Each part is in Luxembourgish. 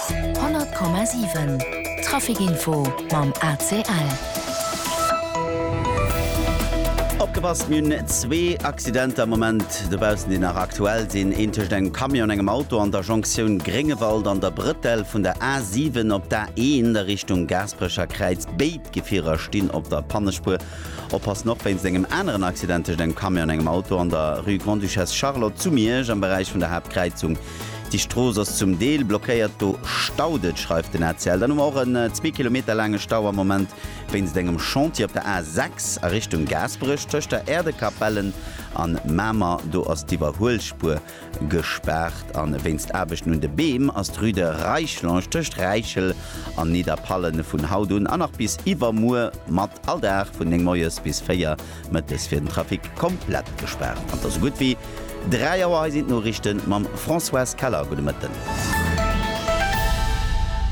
100,7 Trafic info mam ACL. Opgepasst, mir hunn zwee Accidenter am Moment dobaussen, déi nach aktuell sinn. Een tëscht engem Camion an engem Auto an der Jonktioun Gréngewald an der Brëtell vun der A7 op d'A1 a Richtung Gaasperecher Kräiz. Béid Gefierer stinn op der Pannespuer. Oppassen, Och wéinst engem aneren Accident tëscht engem Camion an engem Auto an der Rue Grande-Duchesse Charlotte zu Miersch am Beräich vun der Haaptkräizung. Déi Strooss ass zum Deel blockéiert, do staut et, schreift den ACL. Dann hu mer och en zwee Kilometer laange Stau am Moment wéinst engem Chantier op der A 6 a Richtung Gaasperech tëscht der Äerdekapellen an Mamer. Do ass d'Iwwerhuelspuer Gespaart a wéinst Aarbechten un de Beem ass d'Rue de Reichlonge tëscht Räichel an Nidderpallen vun haut un a nach bis iwwermuer mat all Dag vun 9 moies bis 4 mëttes fir den Trafic komplett gespaart. Zanter esou gutt wéi 3 Auer, hei sinn d'Noriichte mam Françoise Keller. Gudde Mëtten.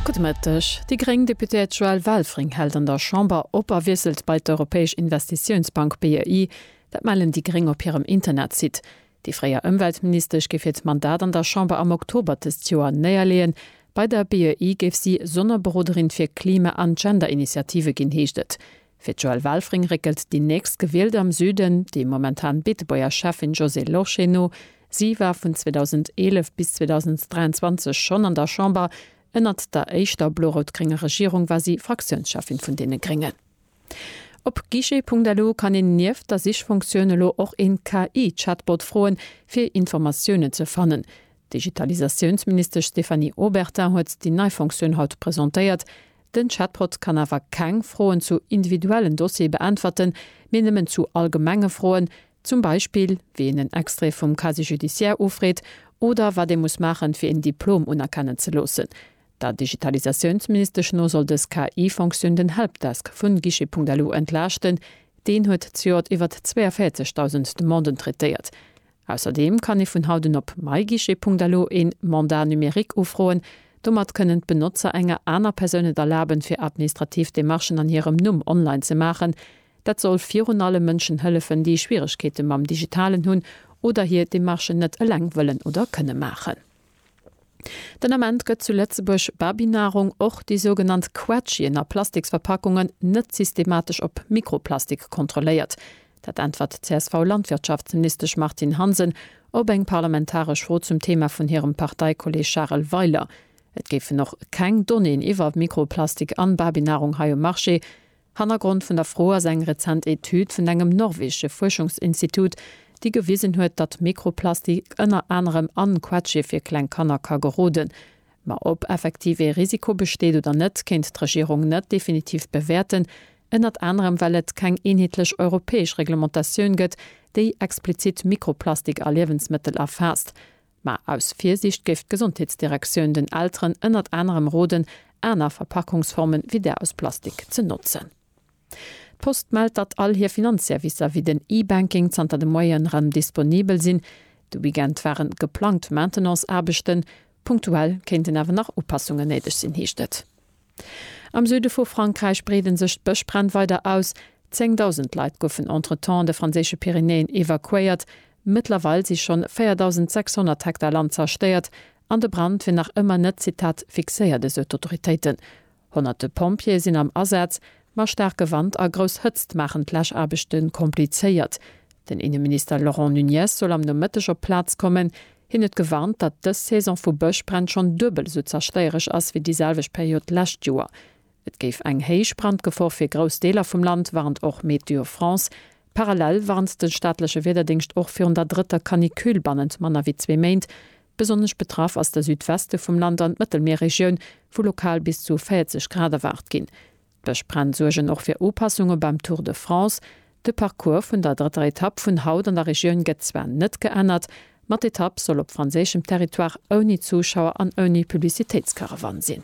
Gudde Mëtteg. Déi gréng Deputéiert Joëlle Welfring hält an der Chamber op a wiesselt bei d'Europäesch Investitiounsbank, BEI. Dat mellen déi gréng op hirem Internetsite. Déi fréier Ëmweltministesch géif hiert Mandat an der Chamber am Oktober dëst Joer néierleeën. Bei der BEI géif si Sonnerberoderin fir Klima an Gender-Initiative ginn, heescht et. Fir d'Joëlle Welfring réckelt déi nächst Gewielte am Süden déi momentan Beetebuerger Schäffin Josée Lorsché no. Si war vun 2011 bis 2023 schonn an der Chamber. Ënnert der éischter blo-rout-grénger Regierung war si Fraktiounsschäffin vun deene Gréngen. Op Guichet.lu kann een nieft der Sichfunktioun elo och een KI-Chatbot froen, fir Informatiounen ze fannen. D'Digitalisatiounsministesch Stéphanie Obertin huet déi nei Funktioun haut presentéiert. Den Chatbot kann awer keng Froen zu individuellen Dossiere beäntwerten, mee nëmmen zu allgemenge Froen, zum Beispill wéi een en Extrait vum Casier judiciaire ufreet oder wat ee muss maachen, fir een Diplom unerkennen ze loossen. Der Digitalisatiounsministesch no soll dës KI-Fonctioun den Helpdesk vu Guichet.lu entlaaschten. Deen huet zejoert iwwer 42.000 Demanden traitéiert. Ausserdeem kann ee vun haut un op myguichet.lu een Mandat numérique ufroen. Domat kënnen d'Benotzer enger aner Persoun et erlaben, fir administrativ Demarchen an hirem Numm online ze maachen. Dat soll virun allem Mënschen hëllefen, déi Schwieregkeete mam Digitalen hunn oder hir Demarchen net eleng wëllen oder kënne maachen. Den Ament gëtt zu Lëtzebuerg Babynahrung, och déi sougenannt Quetschien a Plastiksverpackungen, net systematesch op Mikroplastik kontrolléiert. Dat äntwert d'CSV-Landwirtschaftsministesch Martine Hansen op eng parlamentaresch Fro zum Thema vun hirem Parteikolleeg Charel Weiler. Et géifen och keng Donnéeën iwwer Mikroplastik an Babynahrung hei um Marché, Hannergrond vun der Fro ass eng rezent Etüd vun engem norwegesche Fuerschungsinstitut, déi gewisen huet, datt Mikroplastik ënner anerem an Quetschie fir kleng Kanner ka geroden. Ma ob effektiv ee Risiko besteet oder net, kéint d'Regierung net definitiv bewäerten, ënnert anerem well et keng eenheetlech europäesch Reglementatioun gëtt, déi explizit Mikroplastik a Liewensmëttel erfaasst. Mä aus Virsiicht géif d'Gesondheetsdirektioun den Elteren ënnert anerem roden, aner Verpackungsformen wéi där aus Plastik ze notzen. D'Post mellt, datt all hir Finanzservicer wéi den E-Banking zanter de Moie rëm disponibel sinn. De Weekend ware geplangt Maintenance-Aarbechten. Punktuell kéinten awer nach Upassungen néideg sinn, heescht et. Am Süde vu Frankräich breede sech d'Bëschbränn weider aus. Zéngdausend Leit goufen entretemps de franséische Pyrenäen evakuéiert. Mëttlerweil si schonn 4.600 Hektar Land zerstéiert an de Brand wier nach ëmmer net, Zitat, fixéiert, esou d'Autoritéiten. Honnerte Pompjeeë sinn am Asaz, Ma staarke Wand a grouss Hëtzt maachen d'Läschaarbechte komplizéiert. Den Inneminister Laurent Nunez soll am Nomëtteg op d'Plaz kommen. Hien huet gewarnt, datt dës Saison vu Bëschbränn schonn duebel esou zerstéiereg ass wéi déi selwecht Period d'lescht Joer. Et géif eng héich Brandgefor fir grouss Deeler vum Land, warnt och Météo France. Parallel warnt de staatleche Wiederdéngscht och virun der drëtter Canicule bannent manner wéi zwee Méint. Besonnesch betraff ass de Südweste vum Land an d'Mëttelmierregioun, wou lokal bis zu 40 Grad erwaart ginn. D'Bëschbränn suergen och fir Upassunge beim Tour de France. De Parcours vun der drëtter Etapp vun haut an der Regioun gëtt zwar net geännert, ma d'Etapp soll op franséischem Territoire ouni Zuschauer an ouni Publicitéitskaravan sinn.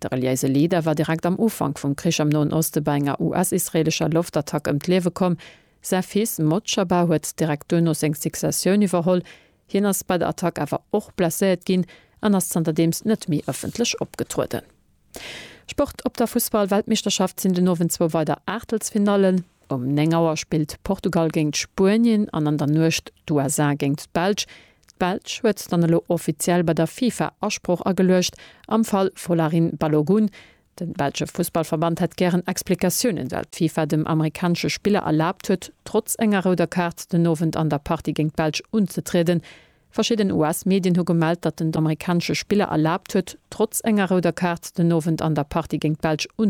De reliéise Leader war direkt am Ufank vum Krich am Noen Oste bei enger US-israeelescher Loftattack ëm d'Liewe komm. Säi Fils Mojtaba huet direkt duerno seng Successioun iwwerholl. Hien ass bei der Attack awer och blesséiert ginn an ass zanterdeems net méi ëffentlech opgetrueden. Sport Op der Fussball-Weltmeeschterschaft sinn den Owend zwou weider Aachtelsfinallen. Um 9 Auer spillt Portugal géint Spuenien an an der Nuecht d'USA géint d'Belsch. D'Belsch huet dann elo offiziell bei der FIFA Asproch ageluecht am Fall Folarin Balogun. De belsche Fussballverband hätt gären Explikatiounen, well d'FIFA dem amerikanesche Spiller erlaabt huet, trotz enger rouder Kaart den Owend an der Partie géint d'Belsch unzetrieden. Verschidden US-Medien hu gemellt, datt den amerikanesche Spiller erlaabt huet, trotz enger rouder Kaart den Owend an der Partie géint d'Belsch